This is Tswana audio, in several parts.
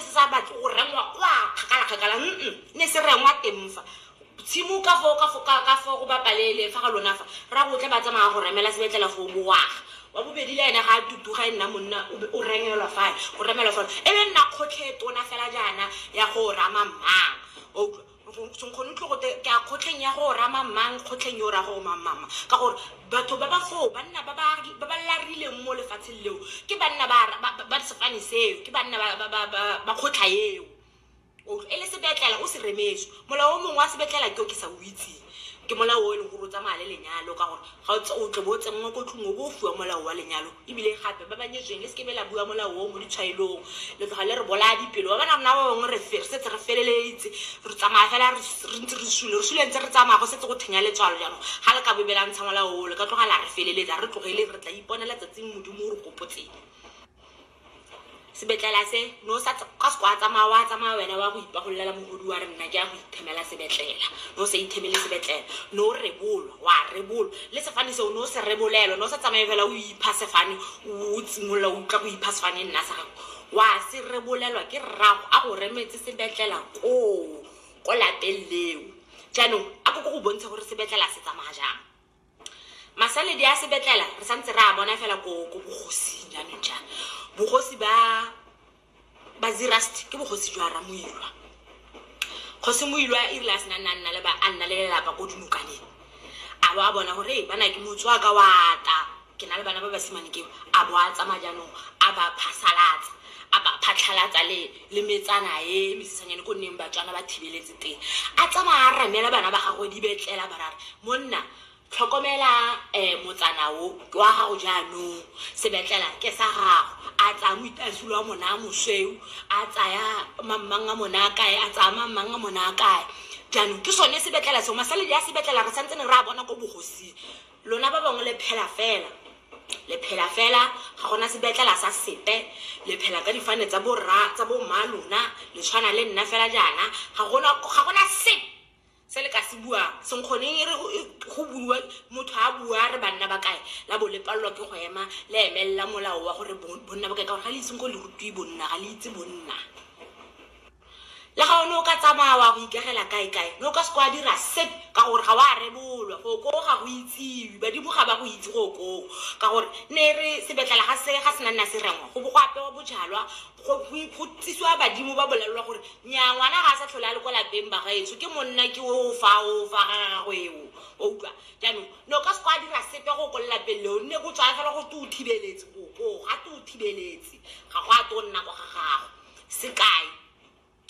Se sa batle go rengwa kwa kgakala-kgakala, mm-mm, ne se rengwa teng fa. Tshimo ka foo, ka fo- ka- ka foo go bapalele fa ga lona fa, ra go tle ba tsamaya go remela sebetlela foo bowaga. Wa bobedi le ene ga a tutuga e nna monna, o be o rengelwa fale, o remelwa fale. E be nna kgotlhe e tona fela jaana ya go rama mmang. Wa utlwa? senkgone utlwe gote ke a kgotlheng ya go rama mang kgotlheng yo o ra gore mamama ka gore batho ba ba foo banna ba ba ba ba larileng mo lefatsheng leo ke banna ba ba- ba- ba sefane seo ke banna ba- ba- ba- ba- ba kgotlha eo O- e le sebetlela o se remetso molao o mongwe wa sebetlela ke o ke sa o itseng Ke molao o e leng gore o tsamaya le lenyalo ka gore ga o tle bo tsenngwa ko tlung o bo o fiwa molao wa lenyalo. Ebile gape ba ba nyetsweng le seke be la bua molao o mo ditshwaelong, le tloga le re bolaya dipelo. Wa bona rona ba bangwe re re setse re feleleditse re tsamaya fela re re ntse re sule, re sule ntse re tsamaya go setse go thenya letswalo. Jaanong ga le ka bobe la ntsha molao o le ka tloga la re feleletsa, a re tlogeleng re tla iponela tsatsing Modimo o re gopotseng. sebetlela se no sa ka se kwa tsamaya wa tsamaya wena wa go ipagololela mogodi wa re nna ke ya go ithemela sebetlela no sa ithemele sebetlela no rebolwa wa rebolwa le sefane seo no se rebolelwa no sa tsamaye fela o ipha sefane o tsimolola o utlwa go ipha sefane nna sa gago wa se rebolelwa ke rrago a go remetse sebetlela koo ko lapeng leo jaanong a ko ko go bontsha gore sebetlela se tsamaya jang masaledi a sebetlela re santse re a bona fela ko ko bogosing jaanong ja bogosi ba ba zirust ke bogosi jwa ramoilwa kgosi moilwa e rile a sena nna nna le ba a nna le lelapa ko dinokaneng a lo a bona gore ee bana ke motswaka wa ta Ke na le bana ba basimane ke a bo a tsamaya jaanong a ba phasalatsa a ba phatlhalatsa le le metsana e mesisanyane ko nneng batswana ba thibeletse teng a tsamaya a ramela bana ba gagwe di betlela barara monna tlhokomela um motsana o ke wa gago jaanong sebetlela ke sa gago a tsaya moitasolo wa mona a mosweu a tsaya mammang a mona a kae a tsaya mammang a mona a kae jaanong ke sone sebetlela seo masaledi a sebetlela re santse ne re a bona ko bogosing Lona ba bangwe le phela fela. Le phela fela, ga gona sebetlela sa sepe. Le phela ka difane tsa borra, tsa bomma lona. Le tshwana le nna fela jaana. Ga gona, ga gona sepe se le ka se buang. Senkgoneng e re go, go buiwa, motho a bua a re banna ba kae, la bo le palelwa ke go ema, le emelela molao wa gore bo, bonna ba kae, ka gore ga le ise senkgong le rutiwe bonna, ga le itse bonna. Le ga o ne o ka tsamaya wa go ikagela kae-kae, ne o ka se kwa dira sepe ka gore ga wa rebolwa. For koo ga go itsiwe, badimo ga ba go itse gore o koo ka gore ne e re sebetlela ga se ga se na nna se rengwa, go bo go apewa bojalwa, go go tsisiwa badimo ba bolelelwa gore nnyaa ngwana ga a sa tlhole a le kwa lapeng bagaetsho, ke monna ke oo fa oo fa ga gagwe eo. Wa utlwa? Jaanong ne o ka se kwa dira sepe ge o ko lelapeng leo, nne go tsaya fela go te o thibeletse, o koo gate o thibeletse, ga go a twe go nna kwa ga gago. sekai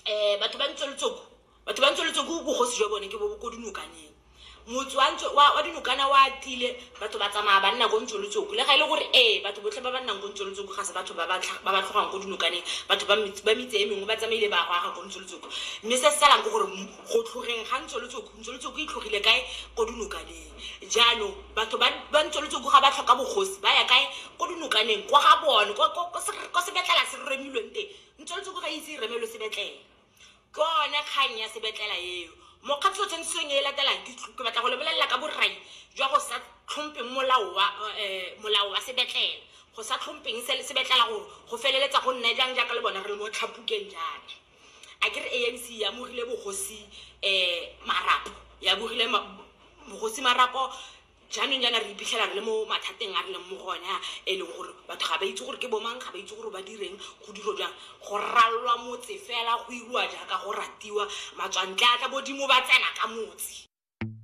um batho ba ntse letsoko batho ba ntse letsoko bogosi jwa bone ke bo ko dinokaneng motse wa ntse wa wa dinokana wa tile batho ba tsamaya ba nna ko ntse letsoko le ga e le gore ee batho botlhe ba ba nnang ko ntse letsoko ga se batho ba ba tlha- ba ba tlhogang ko dinokaneng batho ba metse- ba metse e mengwe ba tsamaile ba go aga ko ntse letsoko mme se se salang ke gore m- go tlhogeng ga ntse letsoko ntse letsoko e tlhogile kae ko dinokaneng jaanong batho ba ba ntsweletse ko ga ba tlhoka bogosi ba ya kae ko dinokaneng kwa ga bone ko- ko- ko se- ko sebetlela se remilweng teng ntsweletse ko ga itse e remelwe sebetlela ke one kgang ya sebetlela eo mokgatlho tshwanetseng e latelang ke tl- ke batla go lebelela ka borai jwa go sa tlhompeng molao wa eh, molao wa sebetlela go sa tlhompeng se- sebetlela gore go feleletsa go nna jang jaaka le bona re le mo tlhapukeng jaana a ke re anc e amogile bogosi um marapo e amogile ma- bogosi marapo jaanong jaana re iphitlhela re le mo mathateng a re leng mo go one a e leng gore batho ga ba itse gore ke bomang ga ba itse gore ba direng go diro jang go ralwa motse fela go iriwa jaaka go ratiwa matswantle a tla bodimo ba tsena ka motse